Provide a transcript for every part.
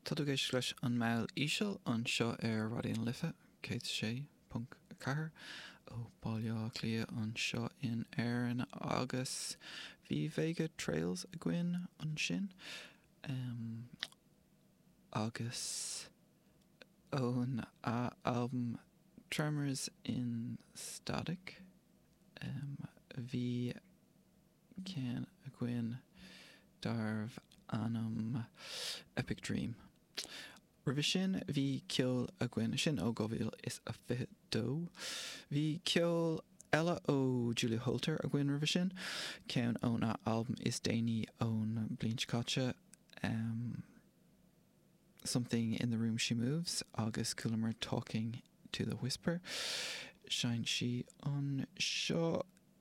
Tá tú ag éisteacht leis An Meall Íseal anseo ar Raidió na Life 106.4 ó Bhaile Átha Cliath anseo in Éirinn agus bhí Vega Trails againn ansin em agus ón a albam Tremors in Static em bhí ceann againn darbh ainm Epic Dream. Roimhe sin bhí ceol againn, sin ó 2022. Bhí ceol eile ó Julia Holter againn roimhe sin, ceann ón a albam is déanaí ón bliain seo caite, Something in the Room She Moves agus chualamar Talking to the Whisper. Sheinn sí anseo.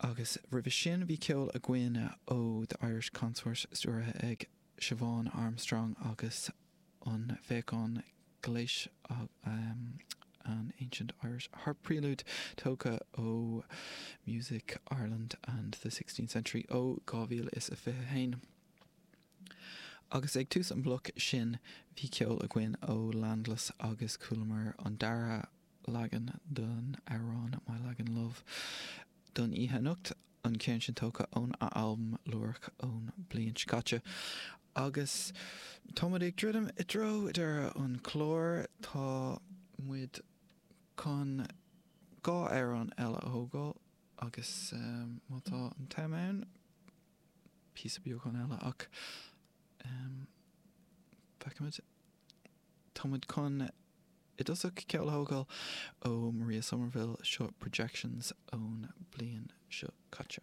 Agus roimhe sin bhí ceol againn ó The Irish Consort stiúraithe ag Siobhán Armstrong agus an Féachain Gléis An Ancient Irish Harp Prelude tógtha ó Music Ireland and the Sixteenth Century ó 2021. Agus ag tús an bloc sin bhí ceol againn ó Landless agus chualamar an dara leagan den amhrán My Lagan Love don oíche anocht, an ceann sin tógtha ón a albam Lúireach ón bliain seo caite. Agus tá muid ag druidim i dtreo deireadh an clár, tá muid chun dhá amhrán eile a thógáil agus má tá an t-am ann, píosa beagán eile ach feicfimid. Táimid chun i dtosach ceol a thógáil ó Maria Somerville, seo Projections ón bliain seo caite.